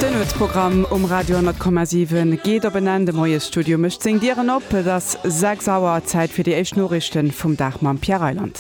Den Nuetsprogramm um Radio 10,7 geet op en Enn. De Moiesstudio mécht seng Dieren op. Et ass 6 Auer. Zäit fir déi éischt Noriichte vum Dag mam Pierre Reyland.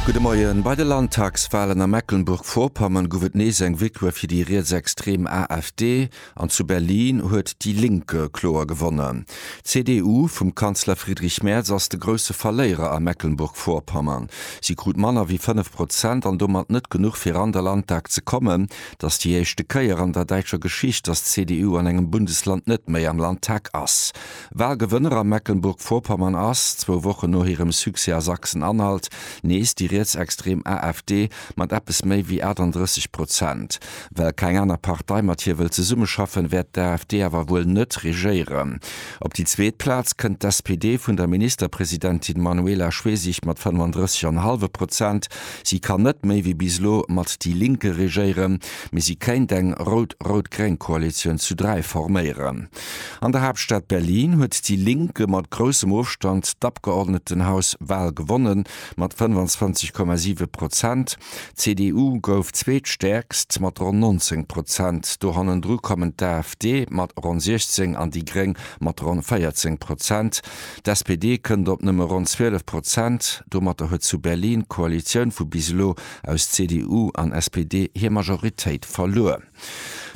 Gudde Moien. Bei de Landtagswalen a Mecklenburg-Vorpommern gouf et nees eng Victoire fir déi rietsextrem AfD. An zu Berlin huet déi Linke kloer gewonnen. D'CDU vum Kanzler Friedrich Merz ass de grousse Verléierer a Mecklenburg-Vorpommern. Si krut manner wéi 5 Prozent an domat net genuch fir an der Landtag ze kommen. Et ass déi éischte Kéier an der däitscher Geschicht, datt d'CDU an engem Bundesland net méi am Landtag ass. Walgewënner a Mecklenburg-Vorpommern ass, zwou Wochen no hirem Succès a Sachsen-Anhalt, nees déi rietsextrem AfD mat eppes méi wéi 38 Prozent. Well keng aner Partei mat hir wëll zesummeschaffen, wäert d'AfD awer wuel net regéieren. Op déi zweet Plaz kënnt d'SPD vun der Ministerpresidentin Manuela Schwesig mat 35 an e hallwe Prozent. Si kann net méi wéi bis elo mat déi Linke regéieren, mee si kéint eng rout-rout-gréng Koalitioun zu dräi forméieren. An der Haaptstad Berlin huet déi Linke mat groussem Ofstand d'Abgeordnetenhaus Wal gewonnen, mat 25,7 Prozent. D'CDU gouf zweetstäerkst mat ronn 19 Prozent. Do hannendru kommen d'AfD mat ronn 16 an déi Gréng mat ronn 14 Prozent. D'SPD kënnt op nëmme ronn 12 Prozent. Domatter huet zu Berlin d'Koalitioun vu bis elo aus CDU an SPD hir Majoritéit verluer.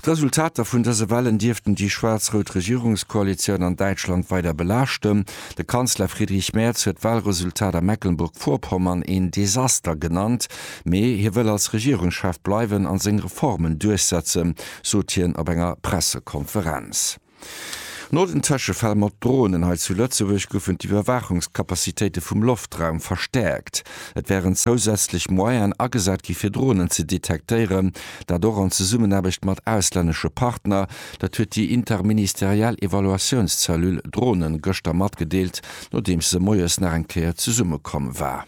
D'Resultater vun dëse Wahlen dierften déi schwaarz-rout Regierungskoalitioun an Däitschland weider belaaschten. De Kanzler Friedrich Merz huet d'Wahlresultat a Mecklenburg-Vorpommern een Desaster genannt, mee hie wëll als Regierungschef bleiwen a seng Reformen duerchsetzen, sot hien op enger Pressekonferenz. No den Tëschefäll mat Dronen hei zu Lëtzebuerg goufen d'Iwwerwaachungscapacitéite vum Loftraum verstäerkt. Et wären zousätzlech Moyenen agesat gi fir Dronen ze detektéieren, dat och an Zesummenaarbecht mat auslännesche Partner. Dat huet déi interministeriell Evaluatiounscellule Dronen gëschter matgedeelt, nodeems se moies nach eng Kéier zesummekomm war.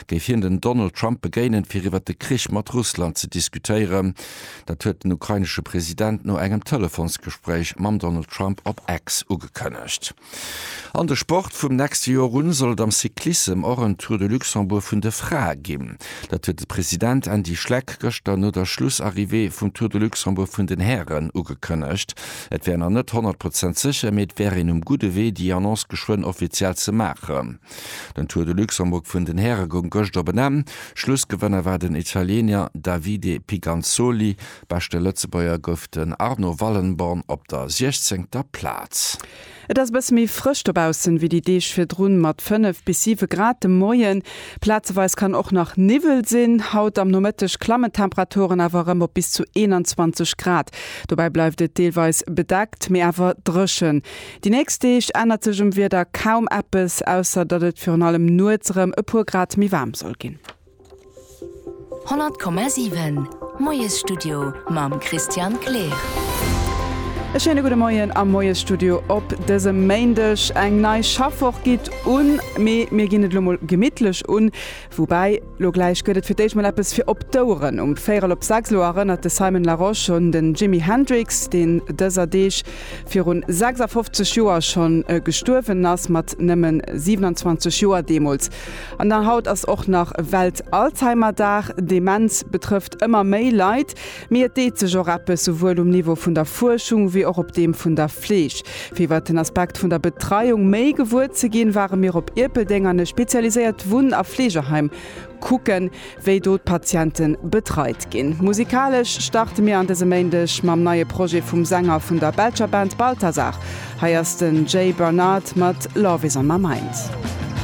géif hien den Donald Trump begéinen, fir iwwer de Krich mat Russland ze diskutéieren. Dat huet den ukrainesche President no engem Telefonsgespréich mam Donald Trump op X ugekënnegt. An de Sport, Vum nächste Joer un soll et am Cyclissem och en Tour de Luxembourg vun de Frae ginn. Dat huet de President Andy Schleck gëschter no der Schlussarrivée vum Tour de Luxembourg vun den Hären ugekënnegt. Et wär nach net 100 Prozent sécher, mee et wär een um gudde Wee, déi Annonce geschwënn offiziell ze maachen. Den Tour de Luxembourg vun den Häre goung gëscht op en Enn. Schlussgewënner war den Italiener Davide Piganzoli. Beschte Lëtzebuerger gouf den Arno Wallenborn op der siechzéngter Plaz. Et ass e bësse méi frësch dobaussen wéi déi Deeg virdrun mat 5 bis 7 Grad de Moien. Plazeweis kann och nach Niwwel sinn. Haut am Nomëtteg klammen d'Temperaturen awer erëm op bis zu 21 Grad. Dobäi bleift et deelweis bedeckt, mee awer dréchen. Déi nächst Deeg ännert sech um Wieder kaum eppes, ausser datt et virun allem nuets erëm e puer Grad méi waarm soll ginn. 100,7 Moiesstudio mam Christian Kleer. E schéine gudde Moien am Moiesstudio op dësem Méindeg. Eng nei Schaffwoch geet un, mee mir ginn et elo mol gemittlech un. Woubäi, lo gläich gëtt et fir d'éischt mol eppes fir op d'Oueren. Um véierel op sechs elo erënnert de Simon Larosche un den Jimi Hendrix, deen dëser Deeg virun 56 Joer schonn gestuerwen ass, mat nëmmen 27 Joer deemools. An haut ass och nach Welt-Alzheimer-Dag. Demenz betrëfft ëmmer méi Leit. Mee et deet sech och eppes, souwuel um Niveau vun der Fuerschung wéi och op deem vun der Fleeg. Fir iwwert den Aspekt vun der Betreiung méi gewuer ze ginn, ware mir op Ierpeldeng an e spezialiséiert Wunn a Fleegeheim kucken, wéi do d'Patiente betreit ginn. Musikalesch starte mir an dësem Méindeg mam neie Projet vum Sänger vun der belscher Band Balthazar. Hei ass den Jay Barnard mat Love Is On My Mind.